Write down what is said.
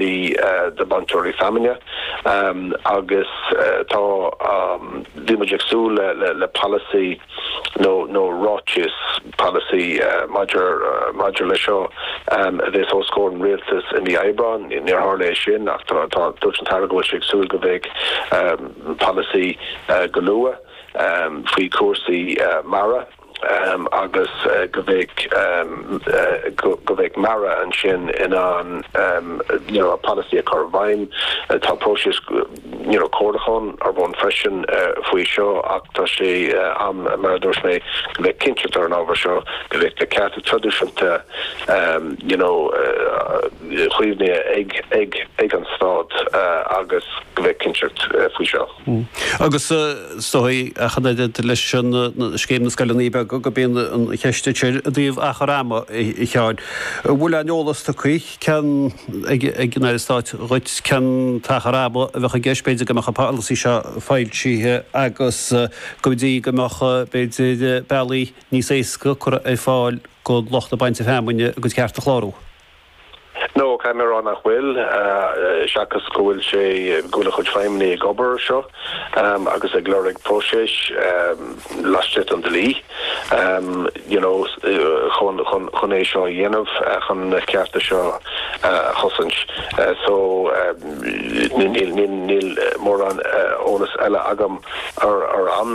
de na bainteoirí feamainne agus tá bhíomar ag súil le polasaí nó nó ráiteas polasaí maidir maidir le seo a bheith os comhair an rialtais i mí Aibreáin níor tharla é sin ach tá tá dúirt an tAire go bhfuil sé ag súil go bheidh polasaí go luath faoi chúrsaí mara. agus go mbeidh go mbeidh MARA ansin in ann an polasaí a chur i bhfeidhm. Tá próiseas you know comhairliúcháin ar bun freisin faoi seo ach tá sé am mar a dúirt mé go mbeidh cinnteacht ar an ábhar seo go mbeidh na cearta traidisiúnta you know caomhnaithe ag ag ag an stát agus go mbeidh cinnteacht faoi seo. Agus is dóigh ach an oiread leis scéim na scoileanna beaga go mbíonn an cheist sin i dtaobh achar ama, a Sheáin. An bhfuil aon eolas tugtha cinn ag an Aire Stáit dhuit cén t-achar ama a bheadh i gceist, b'fhéidir go mbeadh an polasaí seo foilsithe agus go dtí go mbeadh b'fhéidir bealaí níos éasca curtha ar fáil do lucht bainte feamainne a gcuid cearta a chlárú? No, caithfidh mé a rá nach bhfuil, seachas go bhfuil sé, go bhfuil a chuid feidhmeannaigh ag obair air seo agus ag lorg próiseas laistigh den dlí you know chun, chun, chun é seo a dhéanamh, chun na cearta seo a chosaint. So níl, níl, níl mórán eolas eile agam ar an,